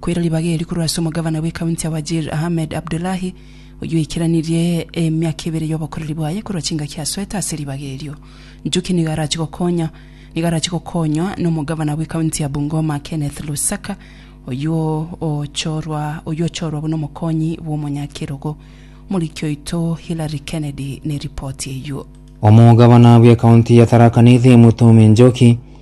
Koira ribaga eri korwa ase omogavana bw'ekaunti ya Wajir, Ahmed Abdullahi, oyio oikeranirie emiaka ebere y'obokoreri bwaye korwa chingaki asoete ase ribaga erio. Njuki nigo arache gokonya nigo arache gokonywa n'omogavana bw'ekaunti ya Bungoma, Kenneth Lusaka, oyio ochorwa oyio ochorwa buna omokonyi bw'omonyakerogo. Omoriki oito Hilary Kennedy neripoti eyio. Omogavana bw'ekaunti ya Tharaka Nithi Mutumi Njuki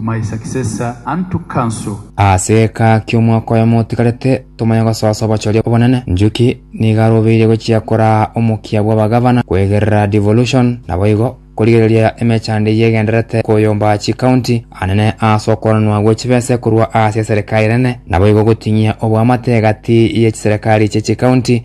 my successor unto council. Ase eka ki'omwaka oyomo otigarete tomanye gosoa soa obochoria obonene, Njuki nigo arobeirie gochia koraa omokia bw'abagavana kwegerera devolution, naboigo korigereria emechando eyio egendererete koyomba chikaunti anene ase okoranwa gwe chibese korwa ase eserekari enene, naboigo goting'ia oboamate egati ye chiserekari chie chikaunti.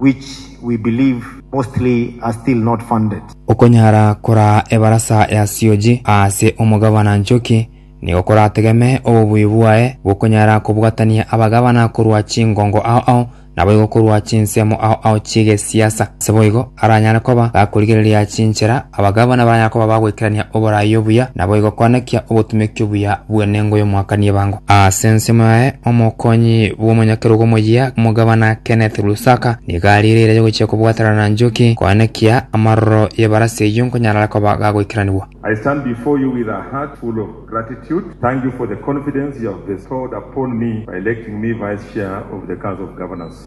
which we believe mostly are still not funded. Okonyara koraa ebarasa ya sioji aase omogavana Nchoki nigo korategeme obobuya bwaye bw'okonyara kobwatania abagavana korwa chingongo ao ao naboigo korwa chinsemo ao ao chi'egesiasa, ase boigo aranyare koba gakorigereria chinchera Abagabana ba Yakobo bagoikerania oboraai obuya, naboigo koanekia obotumeki obuya bw'enengo y'omwakani ebango. Ase ensemo yaye, omokonyi bw'omonyakerogo omoyia, Omogabana Kenneth Lusaka, nigo ariirereire gochia kobwaterana na Njuki koanekia amaroro y'ebarasi eyio nkonyarara koba gagoikeranigwa. I stand before you with a heart full of gratitude. Thank you for the confidence you have bestowed upon me by electing me Vice Chair of the Council of Governors.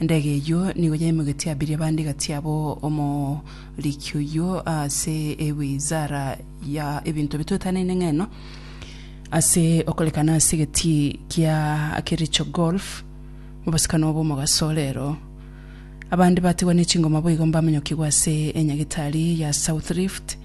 Endege eyio nigo yaimogetie abiria bande gati yabo omoriki oyio ase ewizara ya ebinto bitoetanaine ng'eno ase okorekana ase egetii kia Kericho Golf mobosikano obo omogaso rero. Abande batigwa ne chingoma boigo mbamanyokigwe ase enyagitari ya South Rift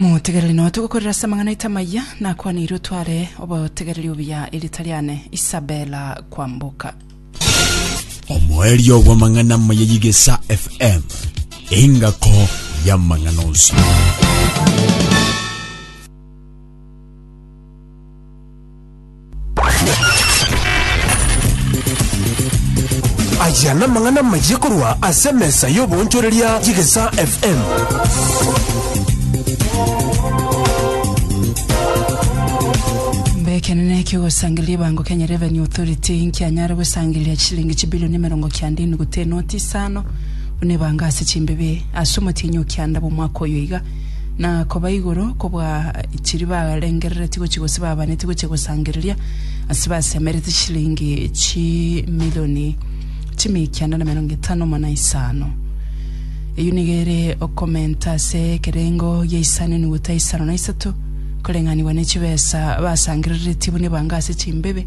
Motegerere nonya togokorera ase amang'ana aito amayia, nakwaneire otware obotegereri obuya erieta riane Isabella Kwamboka. Omoerio bw'amang'ana amaya y'Igesa FM, engako y'amang'ana onsi. Aya namang'ana amayia korwa ase emesa y'oboonchoreria y'Egesaa FM. Mbe ekenene kiogosangereria ebango Kenya Revenue Authority nkianyare gosangereria chishilingi chibilioni emerongo kianda enuguta enoti isano buna ebango ase chimbibe ase omotienyi o kianda bw'omwaka oyo iga na koba igoro kobua chiria barengereretie gochia gose babanetie gochia gosangereria, ase basemerete chilingi chimilioni chimia ekianda na emerongo etano mo na isano. Eyio nigo ere okomenta ase ekerengo gia isano enuguta isano na isato, koreng'anigwa ne chibesa basangereretie buna ebango ase chimbebe,